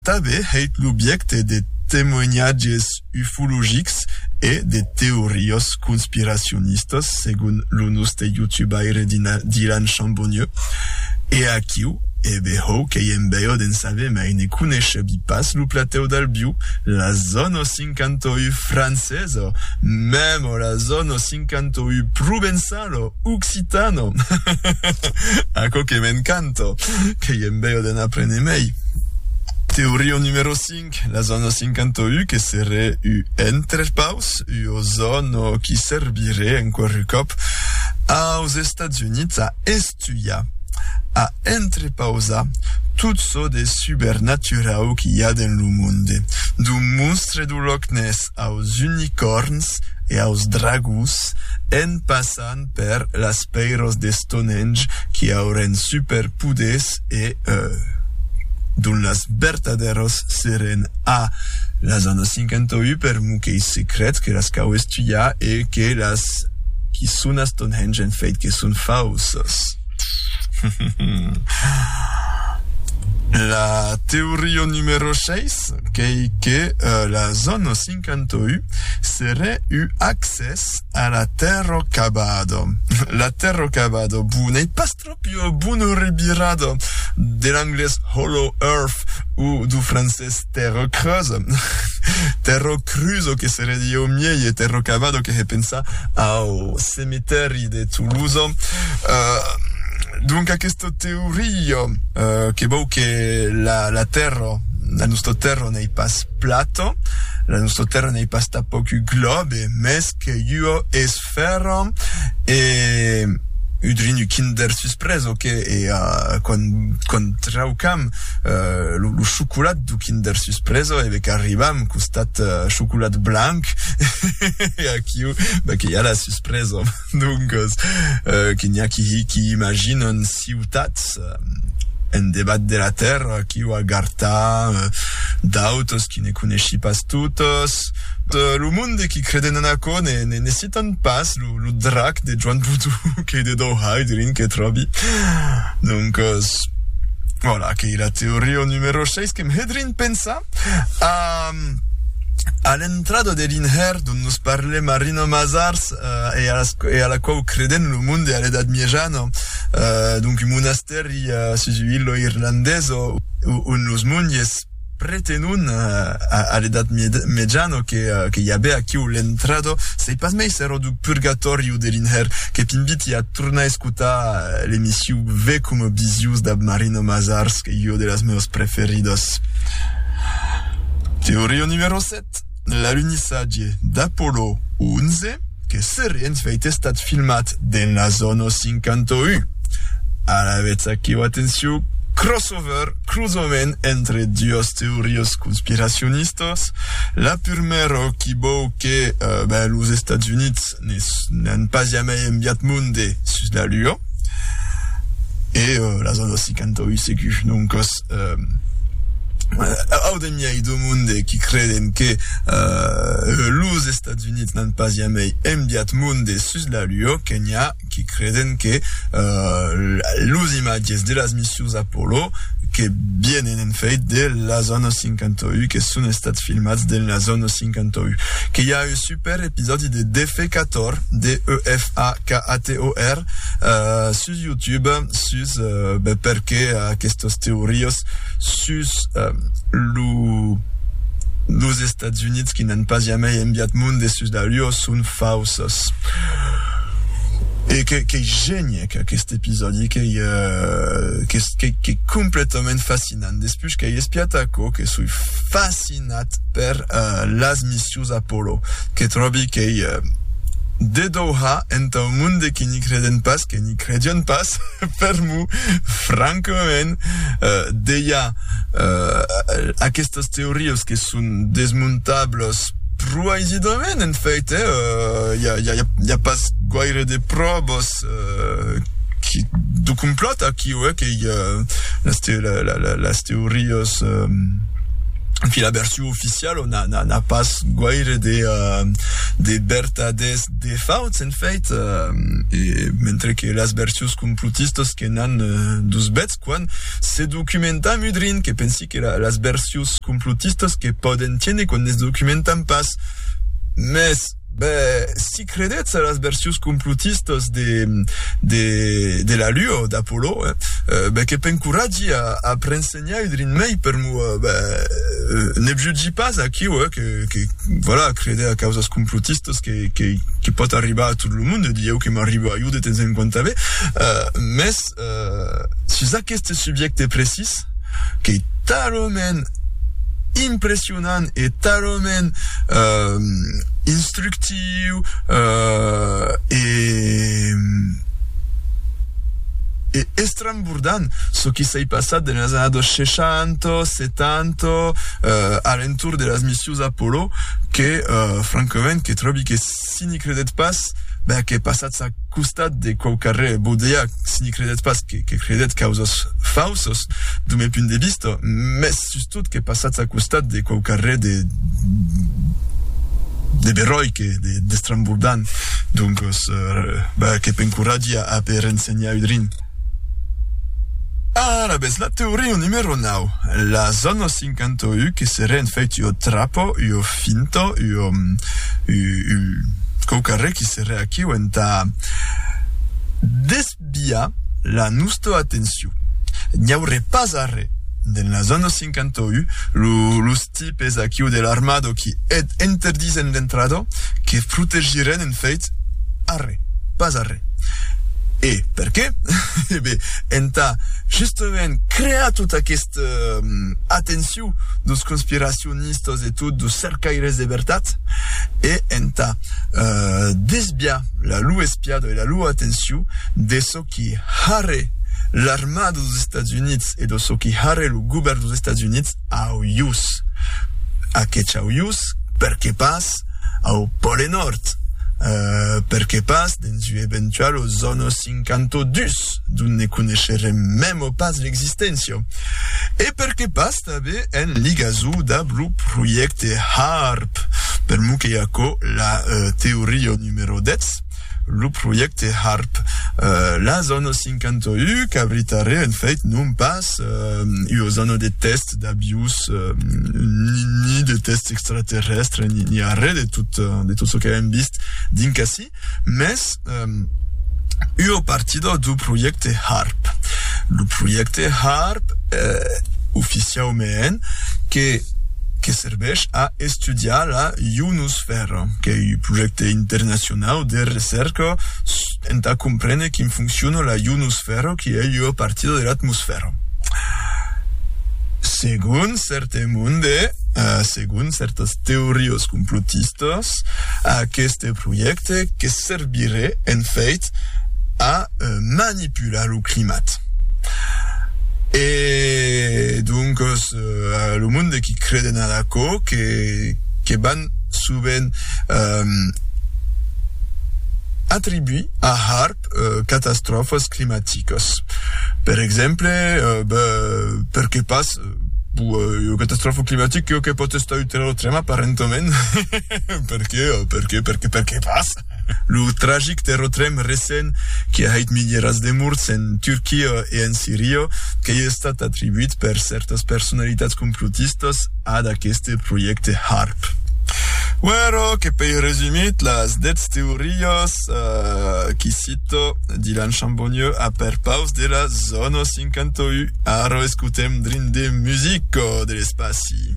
Tanben hèit l'objècte de temoinatges ufologics e de teorias conspiracionistas, segon lo noste youtubaire Dylan Chambonnieu. E aquiu, e behòu qu'ei en bèu d'en saber mai, ne coneishebi pas lo platèu d'Albiu, la zòna 58 francesa, mèma la zòna 58! M'incanto uu provençal o occitano. Aquò que m'encanto, qu'ei en bèu de n'aprene mei. Teoria numero 5, la zòna 51 que seré uu entrepaus, ua zòna qui serviré enqüerru còp aus Estats Units a Tuya, a entrepausar tot çò de subernaturau qu'i a dens lo monde, du monstre du Loch Ness aus unicòrns e aus dragons, en passant per las pèiros de Stonehenge qui aurèn superpoders e dont las vertadèros serèn a las anna's 51 per moquei secrets que las cau estudiar e que las qui son Ton hènge en fèit que son fauses. La teoria numero 6 qu'ei que la zòna 51 serè ua accès a la Terra Cabado. La Terra Cabado, bon, ei pas Ua bona revirada de l'anglés hollow earth o do francés terra creusa, terra crusa que se redie au miei e terra cavada que hè pensar au cemetèri de Tolosa. Donc aquesta teoria que vòu que la terra, la nòsta terra n'ei pas plata, la nòsta terra n'ei pas tanpòc un glòbe, mès qu'ei ua esfèra. Fèrra e udrinu Kinder Susprès, ok, e quand quand traucam lo lo chocolat du Kinder Susprès e be qu'arribam costat chocolat blanc e aquiu be que i a la suspresa, doncas que n'i a qui qui imaginen ciutats, en debat de la tèrra qui'u a gartar, d'autres qui ne coneissi pas totes, lo monde qui creden en aquò ne ne citan pas lo drac de Joan Boudou qu'ei de Dau Haidrin que tròbi doncas vòla qu'ei la teoria numero 6 qu'em Haidrin pensa a a l'entrada de l'inhèrn dont nos parlem a Rino Mazars. e a las e a la quau credent lo monde a l'Edat Miejana, donc un monastèri sus u'illo irlandesa ont los monges pretenon a l'Edat Miejana que que i avè aquiu l'entrada, sei pas mai s'èra du purgatòri o de l'inhèrn, que t'inviti a tornar escotar l'emission Ve coma Bisius dab Marina Mazars, qu'ei ua de las meas preferidas. Teoria numero 7. l'alunissatge d'Apollo 11, que seré en fèit estat filmat dens la zòna 51. Alavetz aquiu, atencion, crossover, crosament entre duas teorias conspiracionistas, la purmèra qui vòu que ben los Estats Units Ne n'an pas jamai enviat monde sus la Lua. E las autras 58 se que non còs au demiai do monde qui creden que los Estats Units n'an pas jamai enviat monde sus la Lua, que n'i a qui creden que los imatges de las missions Apollo que vienen en fèit de las autras 58 que son estats filmats dins las autras 58. Que i a eu Per episòdi de Defecator, D-E-F-A-K-A-T-O-R, sus YouTube, sus perqué aquestos teorios sus lo los Estats Units qui n'an pas jamai enviat monde sus la Lua son fausos. E que qu'ei geniec aquest episòdi, qu'ei qu'ei completament fascinant. Despús qu'ei espiat aquò que soi fascinat per las missions Deus Apollo, que tròbi qu'ei de Doha entau monde que n'i creden pas, que n'i credion pas, per mo, francament, deia aquestas teorias que son desmontablas pro aisidament, en fait, i a pas guaire de pròvas de complòt aquiu, qu'ei las teorias, en fi, la version. radio oficial o n'a n'a n'a pas guaire de de vertadés de fauts en fait e mentre que las versions complotistas que n'an dus bèths quan se documentam udrin que pensi que la las versions complotistas que pòden tiene quan ne se documentam pas mès Ben, si credètz a las versions complotistas de de de la lua o d'Apollo, eh, ben que p'encoratgi a a prensenhar un drin mei per mo, ben, ne vjutgi pas aquiu, eh, que que voilà, creder a causas complotistas que que que pòt arribar a tot lo monde, dieu que m'arriba a iu de temps en quant tanben, eh, mès, sus aqueste subjècte precís, qu'ei talament impressionant e talament instructiu e estrambordant çò qui s'ei passat dens las annadas 60, 70, a l'entorn de las missius Apollo, que francament que tròbi que Si n'i credètz pas, ben que passatz a costat de quauquarre bodega, si n'i credètz pas, que credètz causas fausas, dau me punt de vista, mès sustot que passatz a costat de quauquarre de de beròic e d'estrambordant, doncas, ben que p'encoratgi a aper ensenhar udrin. Alavetz, la teoria numero nau, las zònas. Pincanto u que se rend fèit ua trapo, ua finta, ua, u, u, quauquarre qui se reaquiu entà desviar la nosta atenciu. N'i aurè pas arrè. Dens las annos 51, lo, los tipes aquiu de l'armado qui eth interdisen d'entrador, que protegiren en fèit arrè, pas arrè. E perqué? E ben, entà justament crear tot aqueth. Atenciu dos conspiracionistas e tot dos cercaires de vertat e entà desviar la lor espiada e la lor atenciu de çò qui harè l'armada dos Estats Units e de çò qui harè lo govèrn dos Estats Units au ius, aquetz au ius, perqué pas au Pòle Nòrd, perqué pas dens ua eventuala zòna 52. Sus d'ont ne coneisherem memo pas l'existéncia. E per que pas tanben en ligazo damb lo projècte HAARP, per mou qu'ei aquò la teoria numero 10, lo projècte HAARP. La zòna 51 qu'abritarè en fèit non pas ua zòna de tèst d'aviós ni de tèst extraterrèstre ni arrè de tot çò que avèm vist dinc ací, Mès ua partida dau projècte HARP. Lo projècte HARP, oficiaument, que que serveish a estudiar la ionosfèra, qu'ei un projècte internacionau de recèrca entà comprene quin fonciona la ionosfèra, qui ei ua partida de l'atmosfèra. Segon cèrte monde, Segon cèrtas teorias complotistas, aqueste projècte que serviré en fèit a manipular lo climat. E doncas lo monde qui creden a d'aquò que que van sovent atribuir a HAARP catastròfas climaticas. Per exemple, ben perqué pas Puèi, ua catastròfa climatica çò que pòt estar utila lo tremap'arrentament, perqué? Perqué? Perqué? Perqué pas? Lo tragic terratrèm recent que a hèit milierats de morts en Turquia e en Siria qu'ei estat atribuit per cèrtas personalitats complotistas ad aqueste projècte HAARP. Uèro que pei resumit las 10 teorias qui Tito, Dylan Chambonnieu a per paus de la zona 51. Ara escutem drin de musica de l'espaci.